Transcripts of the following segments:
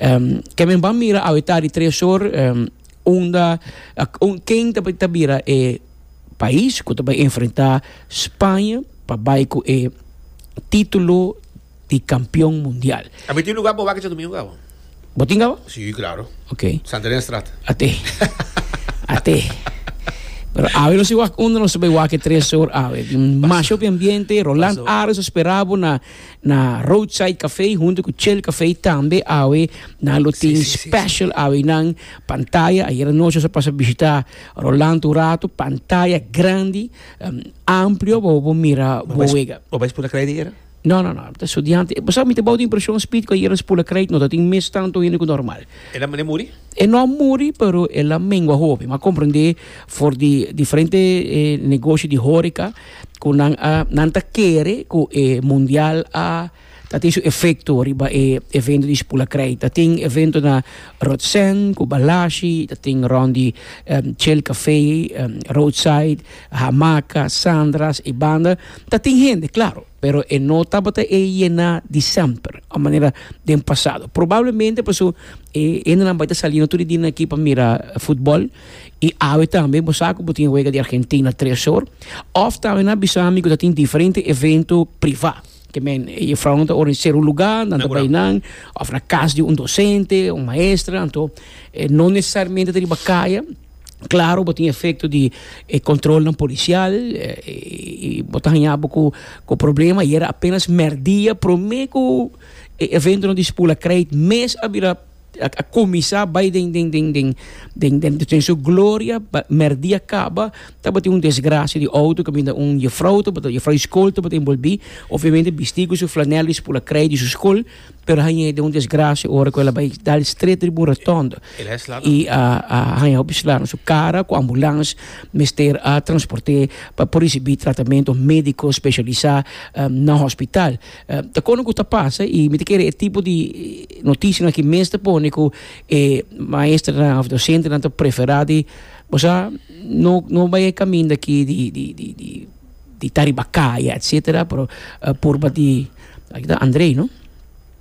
Um, ke men ban mira awe ta di tres or, um, unda, uh, ken ta, ta bira e pais ku ta bai enfrenta Spaña pa bai ku e titulo di kampion mundial. A mi tin lugar pa wak dje domingo kaba. Bo tin kaba? Si, klaro. Ok. Santa Elena Straat. Ate. Ate. Pero awe nos si wak unda nos bai wak e tres or awe. Masho pi ambiente, Roland Ares a spera bo na Na Roadside Café hunto cu Chill Café tambe awe nan lo tin special awenan pantaya. Ayer anochi nos a pasa bishita Rolando un rato, pantaya grandi, amplio bobo bo mira bo wega. Bo bai spula craid ayer? No, no, no, mi ta studiante. Bo sa mi ta bou di impresion Speed cu ayer spula craid no ta tin mes tanto hende cu normal. El a muri? E no a muri pero el a mengua hopi. Mi a comprende for di diferente negoshi di horeca. ku nan a nan ta kere ku e mundial a ta tin su efekto riba e evento di Spul a krei ta tin evento na Rotsèn ku Balashi ta tin rònt di Chel Café Roadside Hamaka Sandras i banda ta tin hende klaro pero e no tabata e yená di semper a manera den pasado probablemente pasobra e hendenan bai ta sali no tur e dina aki pa mira futbòl. Y awe tambe bo sa cu bo tin wega di Argentina tres hor. Of tambe nan a bisa mi cu ta tin diferente evento priva. Ke men e jufrounan ta organise un luga, nan ta bay nan, of na cas di un docente, un maestra. Anto no necesariamente ta riba caya. Claro, bo tin efecto di e controlnan policial y bo ta haña bo cu problema. Ayera apenas merdia prome cu e eventonan di school a cray mes a bira. a a kuminsá bai den den den den den den den su gloria pa mèrdi a kaba tabatin un desgrasia di outo kaminda un jefrou tabata un jefrou di skol tabata enbolbí obviamente bistí ku su flanèl di spul a krei di su skol pero a haña e den un desgrasia ora ku el a bai dal stret riba un rotònda i a a haña hopi sla na su kara ku ambulans mester a transport'é pa por risibí tratamentu médiko speshalisá na hospital. Eh, ta kono ku ta pasa i mi ta kere e tipo di notisianan ki mes ta pone ku e maesternan of dosentenan ta preferá di bo sa no no bai e kaminda aki di di di di di ta riba kaya etsetera pero eh, purba di aki ta Andrei no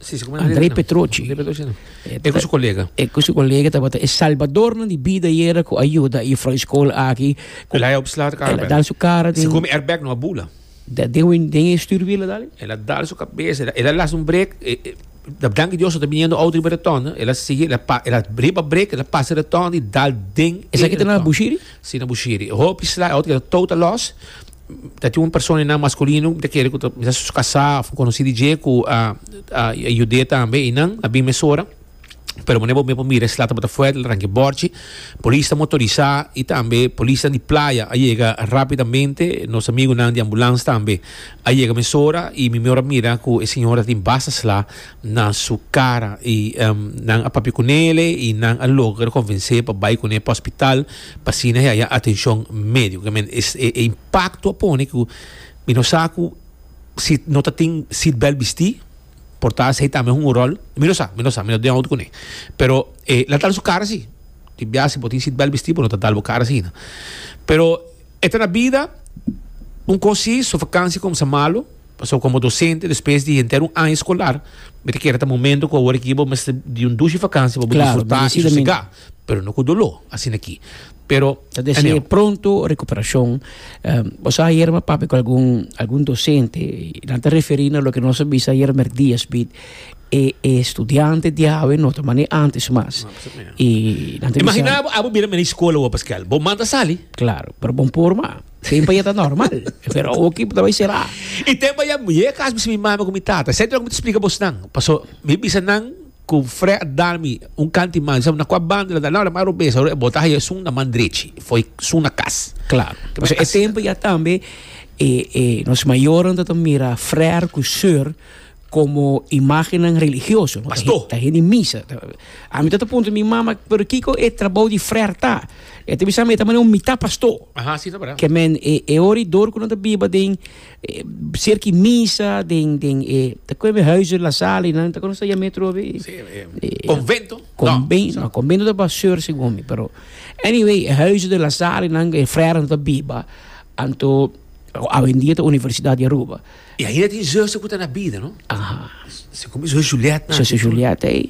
Si, si, como Andrei Petrochi Andrei Petrochi, no. Eh, E ku su kolega. e ku su kolega tabata e salbadornan di bida yera ku ayuda e juffrouw di skol aki ku Elai opslaat el a karbel. dan su kara den Sikum airbag no a bula. Da den wen den e stuurwiel a dal. El a dal su kabes, el a las un brek, da danki Dios so ta biniendo auto riba retonda, el a sigui, el a riba brek, el a pasa retonda y dal den e retonda. Esaki ta na Bushiri? Si, na Bushiri. Hopi sla, e auto keda tou ta los, ta tin un persona einan masculino, mi ta kere ku ta bisa su kasa of konosi di dje ku a yude tambe einan, a bin mesora. pero manera bo mesmo a mira e slata bo ta fuerte el a ranke borchi polisnan motorisa y tambe polisnan di playa a yega rapidamente nos amigunan di ambulance tambe a yega mesora y mi mihor a mira cu e señor a tin basta sla na su cara y nan a papia cu nele y nan a logra convence pa bay cu ne pa hospital pa asina e haya atencion medico men e impacto a pone cu mi no sa cu si no ta tin seatbelt bisti. por ta asei tambe hungo rol mi no sa mi no sa mi no den out kune pero e la tal su kara si di bia si bo tin sitbel bisti bo no ta tal bo kara asina pero e ta na bida un kos si su vakansia kumsa malu pasobra komo dosente despues di henter un aña skolar mi ta kere ta momento ku awor aki bo mester di un dushi vakansia pa bo disfrutá i sosegá. Pero no cu doló, asina ki. Pero. Ta desea e pronto recuperacion. Bo sa ayer mi a papia cu algun, algun docente y nan ta referi na loke nos a bisa ayer mercdia supiet. E, e studiante di awe no ta mane antes mas. Y nan ta bisa. Imagina abo bira mene scola wor Pascual. Bo manda sali. Claro, pero bo no por mas. Tempo ayer ta normal. Pero awo ki bo ta bay cera. Y tempo ayer mi yega cas bisa mi mami cu mi tata. Esey lo cu mi ta splica bosnan. Paso mi bisa nan. Ku Fre Darmi un kanti man, sa na kua banda na ta laura, ma Robes a e bota haña esun na man drechi, foi sun na kas. Klaru. Pasobra e tempu ya tambe e e nos mayornan ta ta mira Frer ku Sor komo imágennan religioso. Pastó. Ta hen di misa. Ami ta ta puntra mi mama, pero kiko e trabou di Frer ta? E ta bisami e ta mane un mitá pastó. Aha, si ta wèra. Ke men e e ora i dor ku nan ta biba den Cerki misa den den e ta koe mi huizen la sala y nan ta kono sa yam'e trobe Convento no no convento ta pa seur sigomi pero anyway e huizen den la sala y nan e frere nan ta biba anto awendia ta Universidad di Aruba y ainda tin zuster ku ta na bida no aha sigomi zuster Juliet nan zuster Juliet ey.